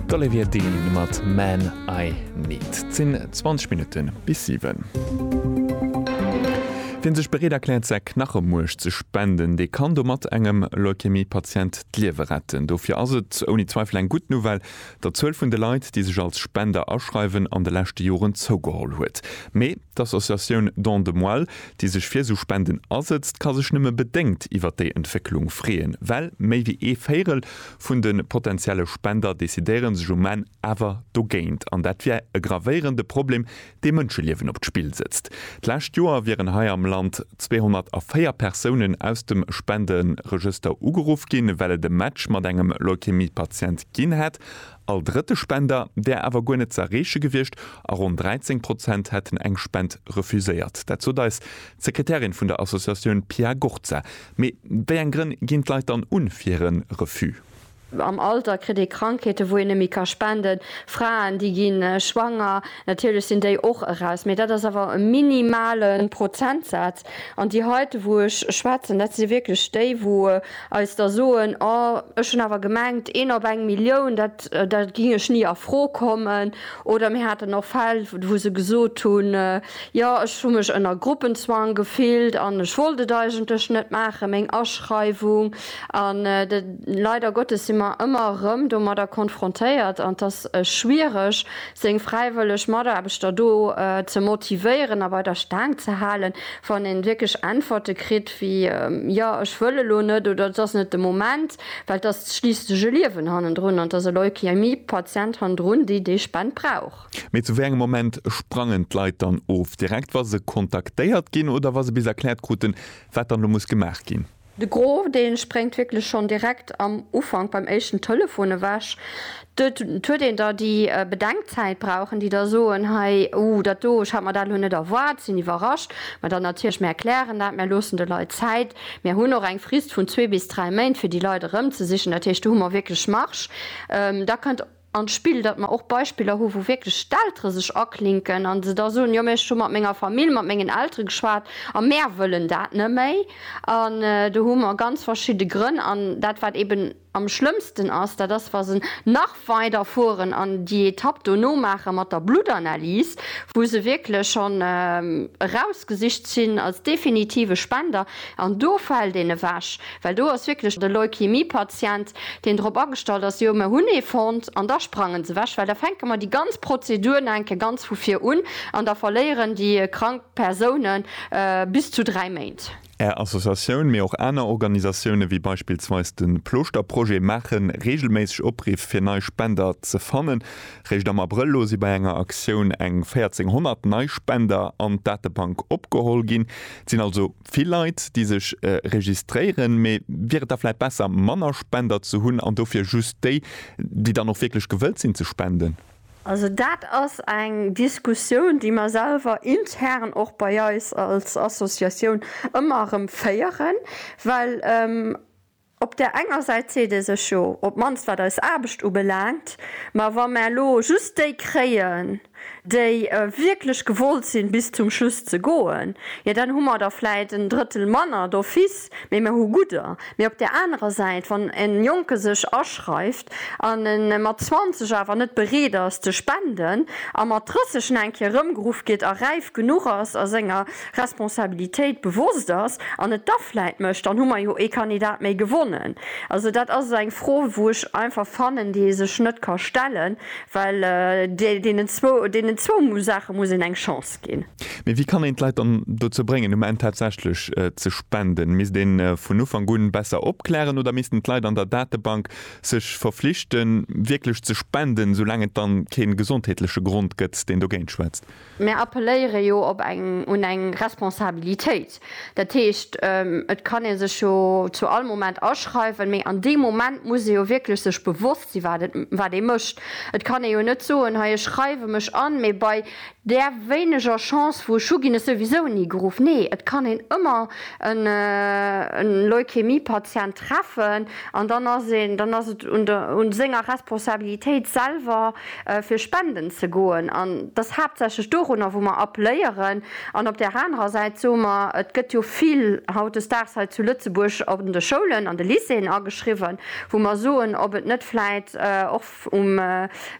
D'Olivia Dean mat Man I Need. Et sinn 20 Minutten bis 7. Wien sech bereet erkläert säi Knachemuerch ze spenden, dee kann domat engem Leukämie-Patient d'Liewe retten. Dofir ass et ouni Zweifel eng gutt Nouvelle, datt d'Zuel vun de Leit, déi sech als Spender aschreiwen, an de leschte Joren zougeholl huet. Mee d'Associatioun Don de Moelle, déi sech fir esou Spenden asëtzt, ka sech nëmme bedéngt iwwert déi Entwécklung freeën, well méi wéi ee Véirel vun de potentielle Spender decidéiere sech um Enn awer dogéint. An dat wier e gravéierende Problem, dee Mënscheliewen op d'Spill sëtzt. D'lescht Joer wieren hei am Land 204 Persounen aus dem Spenderegëster ugeruff ginn, well et e Match mat engem Leukämie-Patient ginn hätt. All drëtte Spender där awer guer net ze erreeche gewiescht a ronn 13 Prozent hätten eng Spend refuséiert. Dat sot eis d'Sekretärin vun der Associatioun Pia Gurza. Mee wéi eng Grënn ginn d'Leit dann un fir hire Refus? Am Alter kritt ee Krankheeten, wou een net méi ka spenden. Fraen, déi gi schwanger. Natierlech sinn déi och eraus, mee dat ass awer e minimale Prozentsaz. An déi heite wou ech schwätzen, dat si wierklech déi wou eis da soen, oh ech hunn awer gemengt, een op eng Millioun, dat da géing ech ni a Fro kommen. Oder mir haten och Fäll wou se gesot hunn, jo ech hu mech ënner Gruppenzwang gefillt an ech wollt et eigentlech net maachen, meng Aschreiwung. An leider Gottes si mer ëmmer erëm domadder konfrontéiert an et ass schwiereg seng fräiwëlleg Mataarbechter do ze motivéieren a bei der Staang ze halen, wann ee wierklech Äntwerte kritt wéi, Jo, ech wëll elo net oder Et ass net de Moment. Well et ass schliisslech e Liewen hannendrun an et ass e Leukämie-Patient hannendrun, déi déi Spend brauch. Mee zu wéi engem Moment sprangen d'Leit dann of? Direkt wa se kontaktéiert ginn oder wa se bis erkläert kruten, wat dann elo muss gemaach ginn? De Gros dee spréngt wierklech schonn direkt am Ufank beim éischten Telefon ewech. Et huet een da déi Bedenkzäit brauchen, déi da soen, hei, uh, dat do, ech hat mer dat elo net erwaart, sinn iwwerrascht. Mä dann natierlech, mir erklären dat, mir loossen de Leit Zäit, mir hunn och eng Frist vun zwee bis dräi Méint, fir déi Leit erëmzesichen. Dat heescht, do hu mer wierklech Marge. Da kënnt. an d'Spill, datt mer och Beispiller hu wou wierklech d'Eltere sech aklinken a se da soen, jo mä ech hu mat menger Famill, mat mengen Eltere geschwat a mär wëllen dat net méi. An do hu mer ganz verschidde Grënn. An dat wat eben am schlëmmsten ass, dat ass wa se nach weider fueren an déi Etapp dono maache mat der Bluttanalys, wou se wierklech schonn erausgesicht sinn als definitive Spender an do fält een ewech. Well do ass wierklech e Leukämie-Patient, deen drop agestallt ass, jo, mer hunn ee fonnt, an da sprangen se ewech, well da fänke mer déi ganz Prozedur nach eng Kéier ganz vu vir un an da verléieren déi krank Persoune bis zu dräi Méint. Är Associatioun, mee och aner Organisatioune wéi beispillsweis de Plooschterprojet maache reegelméisseg Opriff fir nei Spender ze fannen. Réischt am Abrëll elo si bei enger Aktioun eng 1.400 nei Spender an d'Datebank opgeholl ginn. Et sinn also. vill Leit déi sech registréieren, mee wier et da vläit besser manner Spender ze hunn an dofir just déi déi dann och wierklech gewëllt sinn ze spenden? Also dat ass eng Diskussioun déi mer selwer intern och bei eis als Associatioun ëmmer erëm féieren, well. Op där enger Säit seet ee sech, jo, op d'mannst wat eis Aarbecht ubelaangt, ma wa mer elo just déi kréien, déi wierklech gewollt sinn, bis zum Schluss ze goen, jo dann hu mer der vläit en Drëttel manner d'office, mee mer hu gudder. Mee op där anerer Säit, wann e Jonke sech aschreift, an e mat 20 awer net bereet ass ze spenden a mat 30 en eng Kéier erëmgeruff gétt a räif genuch ass a senger Responsabilitéit bewosst ass an et da vläit mécht, dann hu mer jo ee Kandidat méi gewonnen. Also dat ass eng Fro, wou ech einfach fannen, déi ee sech net ka stellen, well deenen zwou Saache muss een eng Chance ginn. ënnerstëtzt ginn. Mee wéi kann een d'Leit dann dozou bréngen, um Enn tatsächlech ze spenden? Misst ee vun Ufank un besser opklären oder missten d'Leit an der Datebank sech verflichten, wierklech ze spenden, soulaang et da kee gesondheetleche Grond gëtt, deen dogéint schwätzt? Mär appelléiere jo op eng un eng Responsabilitéit. Dat heescht, et kann ee sech jo zu all Moment aschreiwen, mee an deem Moment muss ee jo wierklech sech bewosst sinn, wat ee mécht. Et kann ee jo net soen, hei ech schreiwe mech an, mee bei Där wéineger Chance vu Schuh ginn ech souwisou ni geruff. Nee, et kann een ëmmer e Leukämie-Patient treffen an dann ass een, dann ass et un der, un senger Responsabilitéit selwer fir spenden ze goen an et ass haaptsächlech dorunner wou mer appléieren. An op där anerer Säit soe mer, et gëtt jo vill hautdesdaags hei zu Lëtzebuerg an de Schoulen, an de Lycéeën ageschriwwen, wou mer soen, ob et net vläit och um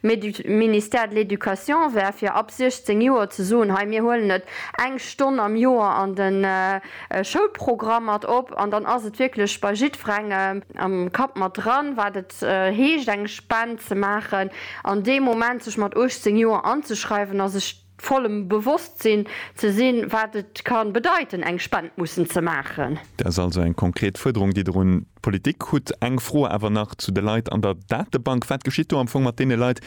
Ministère de l'Education wär, fir ab 16 Joer ze soen, hei mir huelen et eng Stonn am Joer an de Schoulprogramm mat op, an dann ass et wierklech bei jiddwerengem am Kapp mat dran, wat et heescht eng Spend ze maachen, an dee Moment sech mat 18 Joer anzeschreiwen a sech. vollem Bewosstsinn ze sinn, wat et ka bedeiten, eng Spend mussen ze maachen. Dat ass also eng konkret Fuerderung, déi Der un d'Politik hutt. Eng Fro awer nach zu de Leit an der Datebank. Wat geschitt do am Fong mat deene Leit,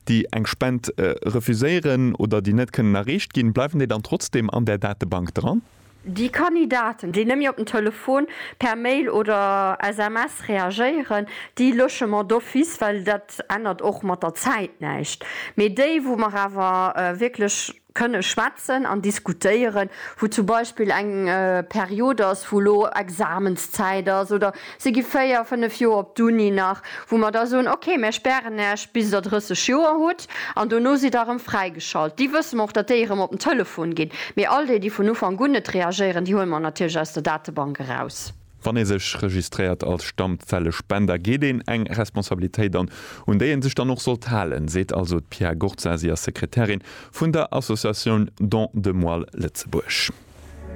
déi eng Spend refuséieren oder déi net kënnen erreecht ginn? Bleiwen déi dann trotzdeem an där Datebank dran? Déi Kandidaten, déi nëmme op den Telefon, per Mail oder SMS reagéieren, déi Logement d'office, well dat ännert och mat der Zäit näischt. Mee déi, wou mer awer wierklech kënne schwätzen an diskutéieren, wou zum Beispill eng Period ass, wou elo Examenszäit ass oder Si gi véier, fënnef Joer op d'Uni nach, wou mer da soen, okay, mär spären Äech bis Der 30 Joer hutt an dono sidd Der erëm fräigeschalt. Déi wësse mer och, datt déi erëm op den Telefon ginn. Mee all déi, déi vun Ufank un net reagéieren, déi huele mer natierlech aus der Datebank eraus. Wann ee sech registréiert als Stammzellespender, geet een eng Responsabilitéit an, un déi ee sech dann och sollt halen, seet also d'Pia Gorza. Si ass Sekretärin vun der Associatioun Don de Moelle Lëtzebuerg.